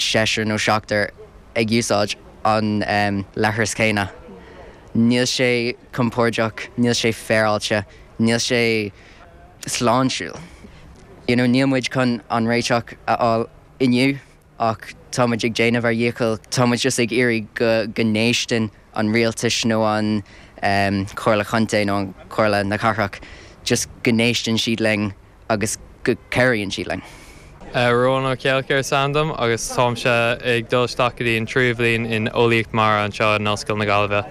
seisear nó seachtar ag úsáid an leithris chéanna. Níl sé compóirdeach, níl sé féaráilte, níl sé sláintiúil. You know, níl muid chun an réiteach a fháil inniu ach tá muid ag déanamh ár ndícheall, tá muid just ag iarraidh go go n-éisteann an rialtais nó an Chomhairle Chontae nó an Chomhairle na Cathrach, just go n-éisteann siad linn. agus go gcabhraíonn sí linn. Ruán Ó Ceallachair is ainm dom agus táimse ag dul isteach go dtí an tríú bhliain in Eolaíocht Mara anseo in Ollscoil na Gaillimhe.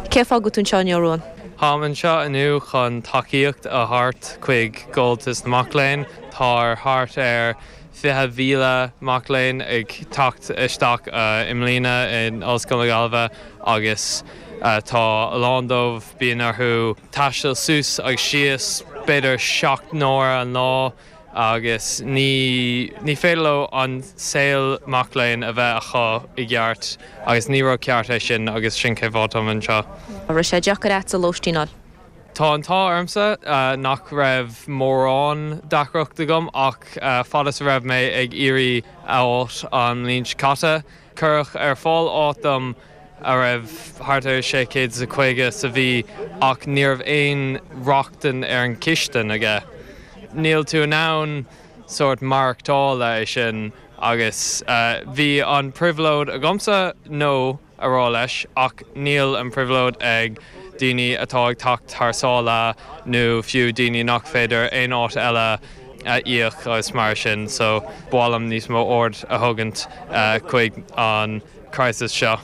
Cén fáth a bhfuil tú anseo inniu, Ruán? Táim anseo inniu chun tacaíocht a thabhairt chuig Comhaltas na Mac Léinn. Tá thart ar 20,000 mac léinn ag teacht isteach i mbliana in Ollscoil na Gaillimhe agus. Tá a lán dóibh, bíonn orthu taisteal suas agus síos, b'fhéidir seacht n-uaire an lá, agus ní ní féidir leo an saol mac léinn a bheith acu i gceart, agus ní rud ceart é sin, agus sin cén fáth atáim anseo. An raibh sé deacair leatsa lóistín a fháil? Tá an t-ádh ormsa nach raibh mórán deacrachta agam, ach fad is a raibh mé ag iarraidh áit a fháil an bhliain seo caite, Cuireadh ar fáil áit dom a raibh thart ar 650 sa mhí ach ní raibh aon rochtain ar an chistin aige. Níl tú in ann sórt maireachtála é sin agus bhí an phribhléid agamsa no a rá leis ach níl an phribhléid ag daoine atá ag teacht thar sáile nó fiú daoine nach féidir aon áit eile a íoc agus mar sin so ba mhaith liom níos mó aird a thugaint chuig an crisis seo.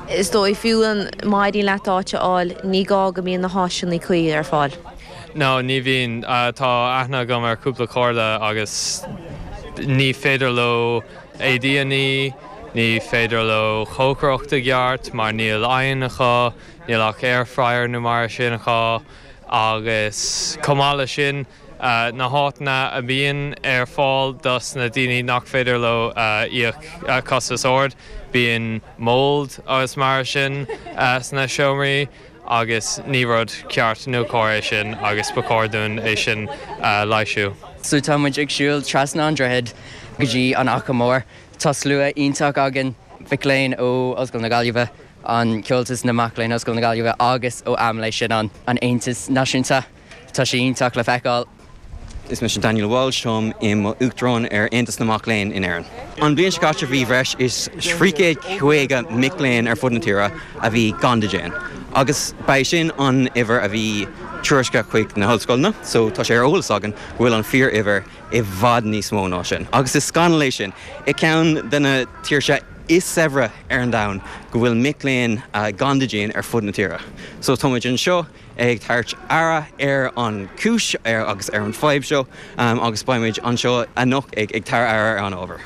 Is dóigh fiú má éiríonn leat áit a fháil ní gá go mbíonn na háiseanna cuí ar fáil. No, ní bhíonn. Tá aithne agam ar chúpla cairde agus ní féidir leo éadaí a ní, ní féidir leo cócaireacht i gceart mar níl oigheann acu, níl ach air fryer nó mar sin acu agus chomh maith le sin, na háiteanna a mbíonn ar fáil dos na daoine nach féidir leo íoc costas ard, bíonn mould agus mar sin sna seomraí agus ní rud ceart nó cóir é sin agus ba chóir dúinn é sin a leighsiú. So tá muid ag siúl trasna an droichead go dtí an Fhaiche Mhór. Tá slua iontach againn, mhic léinn ó Ollscoil na Gaillimhe, an Comhaltas na Mac Léinn Ollscoil na Gaillimhe agus ó AMLÉ, sin an, An Aontas Náisiúnta. Tá sé iontach le feiceáil. Is mise Daniel Walsh. Táim i mo Uachtarán ar Aontas na Mac Léinn in Éirinn. An bhliain seo caite bhí bhreis is 350 mic léinn ar fud na tíre a bhí gan dídean agus ba é sin an uimhir a bhí tuairiscthe chuig na hollscoileanna so tá sé ar eolas againn go bhfuil an fíor uimhir i bhfad níos mó ná sin agus is scannal é sin i ceann de na tíortha is saibhre ar an domhan go bhfuil mic léinn gan dídean ar fud na tíre so táimid anseo ag tabhairt aird ar an gcúis agus ar an bhfadhb seo agus beimid anseo anocht ag tabhairt aird ar an ábhar.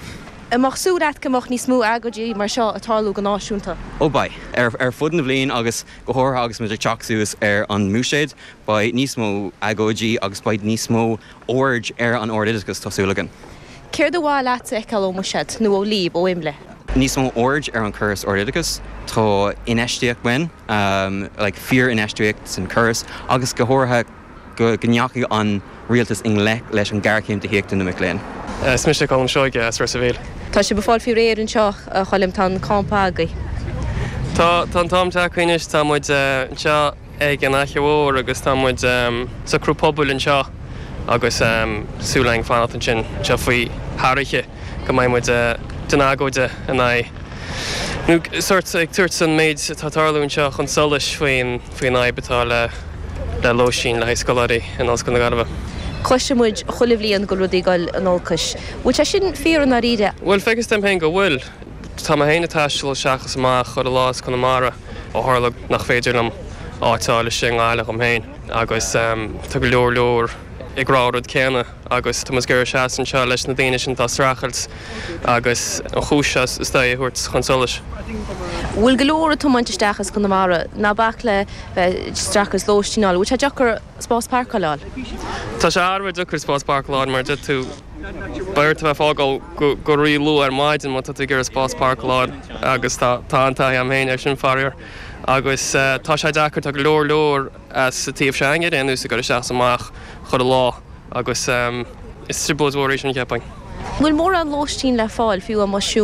An mbeadh súil leat go mbeadh níos mó agóidí mar seo ag tarlú go náisiúnta? Ó beidh. Ar fud na bhliain agus go háirithe agus muid ag teacht suas ar an mBuiséad beidh níos mó agóidí agus beidh níos mó aird ar an ard-oideachas, tá súil againn. Céard ba mhaith leat a fheiceáil ón mBuiséad nó ó Leap, ó Imle? Níos mó aird ar an chóras ard-oideachais. Tá infheistíocht uainn, like fíor-infheistíocht san chóras agus go háirithe go ndeachaigh an rialtas i ngleic leis an géarchéim tithíochta na mic léinn. Is mise Colm Seoige as Ros a' Mhíl. Tá sibh ag fáil faoi réir anseo a Choilm, tá an campa agaibh. Tá an team tagtha anois, tá muid anseo. ag an Fhaiche Mhór agus tá muid ag socrú pubaill anseo agus súil againn fanacht ansin anseo faoi thar oíche go mbeidh muid den agóid in aghaidh nó sórt ag tabhairt an méid atá tarlú anseo chun solais faoin faoin fhadhb atá le le lóistín le haghaidh scoláirí in Ollscoil na Gaillimhe. Cloiseann muid chuile bhliain go bhfuil rudaí ag goil in olcas. Bhfuil sé sin fíor i ndáiríre? Bhuel, feictear dom féin go bhfuil. Tá mé féin ag taisteal isteach is amach chuile lá as Conamara ó tharla nach féidir liom áit a fháil istigh i nGaillimh dom féin agus tá go leor leor ag rá an rud céanna agus tá muid ag iarraidh seasamh anseo leis na daoine sin atá ag streachailt agus an chúis seo is dóigh a thabhairt chun solais. Bhfuil go leor ag tiomáint isteach as Conamara? Ná bac le bheith ag streachailt lóistín a fháil, an bhfuil sé deacair? spás páirceáil. Tá sé thar a bheith deacair spás páirceáil a fháil mar déarfainn gur beart a bheith ag fágáil go rí-luath ar maidin má tá tú ag iarraidh spás páirceáil a fháil agus tá an-taithí agam féin air sin, faraor, agus tá sé deacair, tá go leor leor sa taobh seo a'inne ar aon nós, ag goil isteach is amach chuile lá agus is trioblóid mhór í sin, cheapfainn. An bhfuil mórán lóistín le fáil, fiú amuigh?